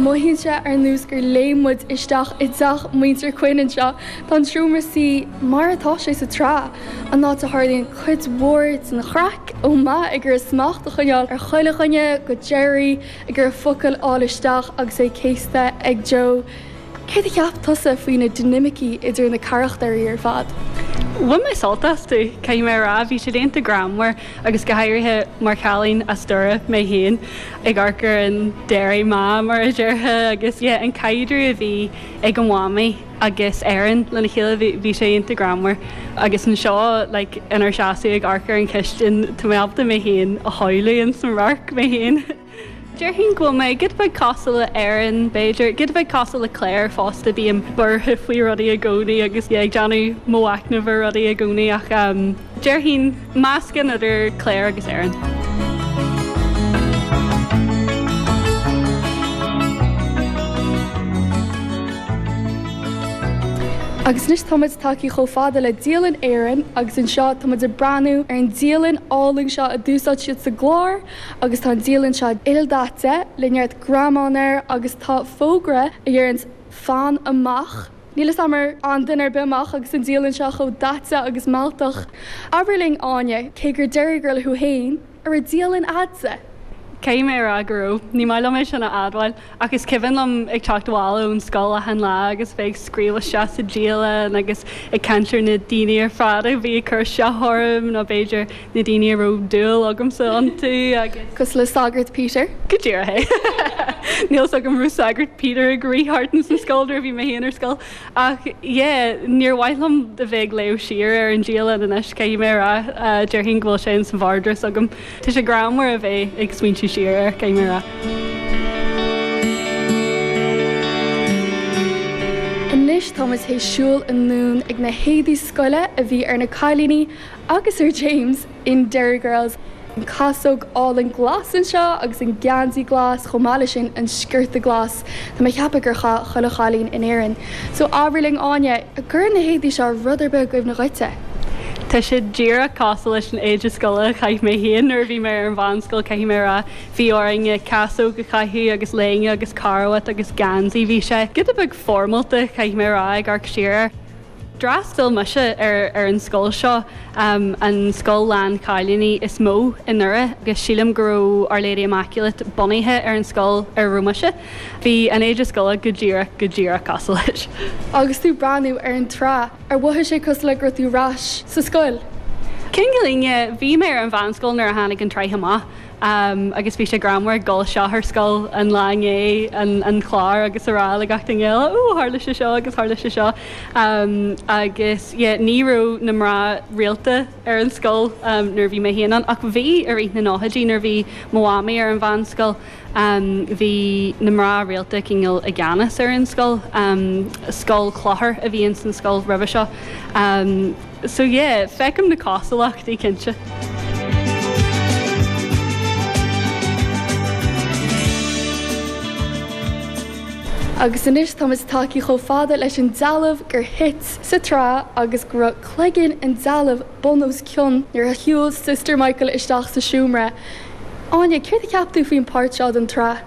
Mothaíonn sé ar nós gur léim muid isteach i dteach muintir Quinn anseo. Tá an seomra suí mar atá sé sa tsraith, an áit a dtarlaíonn cuid mhór den chraic, ó Matt ag iarraidh smacht a choinneáil ar chuile dhuine, go Gerry ag iarraidh focal a fháil isteach agus é céasta ag Joe. Céard a cheap tusa faoi na dinimicí idir na carachtairí ar fad? Bhain mé sult astu, caithfidh mé a rá. Bhí siad iontach greannmhar agus go háirithe mar chailín as Doire mé féin, ag amharc ar an Derry ma mar a déarfá agus yeah an caidreamh a bhí ag an mhamaí agus Erin lena chéile bhí bhí sé iontach greannmhar agus anseo like inár seasamh ag amharc ar an chistin tá mé ábalta mé féin a shamhlú ins an radharc mé féin. Déarfainn go bhfuil mé giota beag cosúil le Erin b'fhéidir, giota beag cosúil le Claire fosta, bím buartha faoi rudaí i gcónaí agus yeah ag déanamh mo mhacnamh ar rudaí i gcónaí ach ehm déarfainn meascán idir Claire agus Erin. Agus anois tá muid tagtha chomh fada le dialann Erin agus anseo tá muid ag breathnú ar an dialann álainn seo a d'úsáid siad sa gclár. Agus tá an dialann seo ildaite le neart greamáin air agus tá fógra a dheireanns 'Fan amach'. Níl fhios a'm ar fhan duine ar bith amach agus an dialann seo chomh daite agus mealltach. Abair linn Áine, cé gur Derry Girl thú fhéin, an raibh dialann a'dsa? Caithfidh mé a rá go raibh. Ní maith liom é sin a admháil. Ach is cuimhin liom ag teacht abhaile ón scoil achan lá agus bheith ag scríobh isteach sa dialann agus ag caint ar na daoine ar fad a bhí ag cur isteach orm, nó b'fhéidir na daoine a raibh dúil agamsa iontu agus. cosúil le Sagart Peter. Go díreach é. Níl 'fhios agam an raibh Sagart Peter ag rith thart ins an scoil nuair a bhí mé féin ar scoil, ach yeah, níor mhaith liom a bheith ag léamh siar ar an dialann anois, caithfidh mé a rá. Déarfainn go bhfuil sé ins an vardrús agam. Tá sé greannmhar a bheith ag smaointiú siar air, caithfidh mé a rá. Anois táimid théis siúl anonn chuig na héadaí scoile a bhí ar na cailíní agus ar James in Derry Girls, an chasóg álainn glas anseo agus an geansaí glas chomh maith leis an sciorta glas. Tá mé ag ceapadh a chaith chuile chailín in Éirinn. So abair linn Áine, an gcuireann na héadaí seo rud ar bith i gcuimhne dhuitse? Tá sé díreach cosúil leis an éide scoile a chaith mé féin nuair a bhí mé ar an mheánscoil caithfidh mé a rá. Bhí orainn casóg a chaitheamh agus léine agus carbhat agus geansaí. Bhí sé giota beag foirmeálta caithfidh mé a rá ag amharc siar air. D'fhreastal mise ar ar an scoil seo, an scoil lán chailíní is mó i nDoire agus sílim go raibh Our Lady Immaculate bunaithe ar an scoil ar raibh mise. Bhí an éide scoile go díreach, go díreach cosúil leis. Agus tú breathnú ar an tsraith, ar mhothaigh sé cosúil le go raibh tú arais sa scoil? Cinnte, cinnte. Bhí mé ar an mheánscoil nuair a tháinig an tsraith amach. Am agus bhí sé greannmhar ag dul isteach ar scoil an lá i ndiaidh an an chlár agus a rá le gach duine eile Ó tharla sé seo agus tharla sé seo. Am agus yeah ní raibh na mná rialta ar an scoil nuair a bhí mé féin ann ach bhí i rith na nóchaidí nuair a bhí mo mhamaí ar an mheánscoil am bhí na mná rialta cineál i gceannas ar an scoil. Am scoil clochair a bhí ins an scoil roimhe seo. Am. So yeah, feicim na cosúlachtaí, cinnte. Agus anois táimid tagtha chomh fada leis an dealbh gur thit sa tsraith agus go raibh cloigeann an dealbh bun os cionn nuair a shiúil Sister Michael isteach sa seomra. Áine, céard a cheap tú faoin páirt seo den tsraith?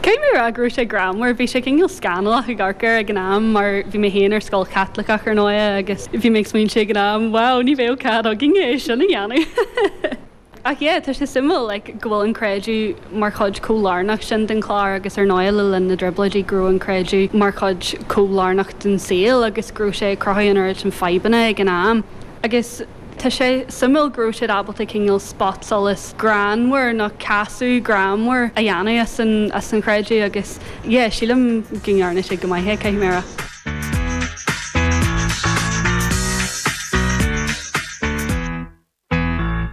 Caithfidh mé a rá go raibh sé greannmhar. Bhí sé cineál scannalach ag amharc air ag an am mar bhí mé féin ar scoil Chaitliceach ar ndóigh agus bhí mé ag smaointiú ag an am, wow, ní bheadh cead againne í sin a dhéanamh! Ach yeah, tá sé suimiúil like go bhfuil an creideamh mar chuid chomh lárnach sin den chlár agus ar ndóigh le linn na dTrioblóidí go raibh an creideamh mar chuid chomh lárnach den saol agus go raibh sé ag cruthú an oiread sin fadhbanna ag an am agus Tá sé suimiúil go raibh siad ábalta cineál spotsolas greannmhar nó casadh greannmhar a dhéanamh as an, as an chreideamh agus yeah, sílim go ndearna siad go maith é, caithfidh mé a rá.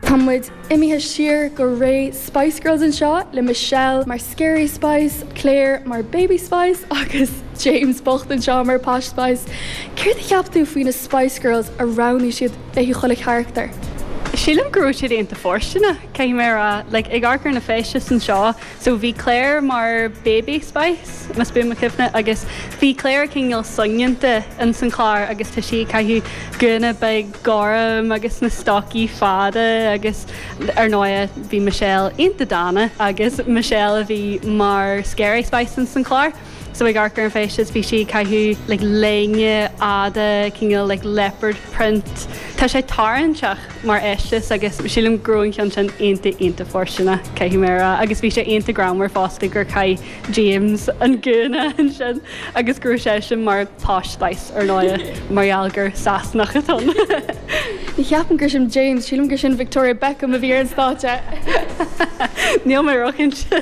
Tá muid Imithe siar go ré Spice Girls anseo, le Michelle mar Scary Spice, Clare mar Baby Spice agus James bocht anseo mar Posh Spice. Céard a cheap tú faoi na Spice Girls a roghnaigh siad le haghaidh chuile charachtar? Sílim go raibh siad iontach fóirsteanach, caithfidh mé a rá, like, ag amharc ar na feisteas anseo, So bhí Claire mar baby spice, más buan mo chuimhne, agus bhí Claire cineál soineanta ins an chlár agus tá sí ag caitheamh gúna beag gorm agus na stocaí fada agus ar ndóigh bhí Michelle iontach dána agus Michelle a bhí mar scary spice ins an chlár. so ag amharc ar an feisteas bhí sí ag caitheamh like léine fhada cineál like leopard print tá sé tarraingteach mar fheisteas agus sílim go raibh an ceann sin iontach iontach fóirsteanach caithfidh mé a rá agus bhí sé iontach greannmhar fosta gur chaith James an gúna ansin agus go raibh seisean mar posh spice ar ndóigh mar gheall gur Sasanach atá ann ní cheapaim gur sin James sílim gur sin Victoria Beckham a bhí ar an stáitse níl mé róchinnte.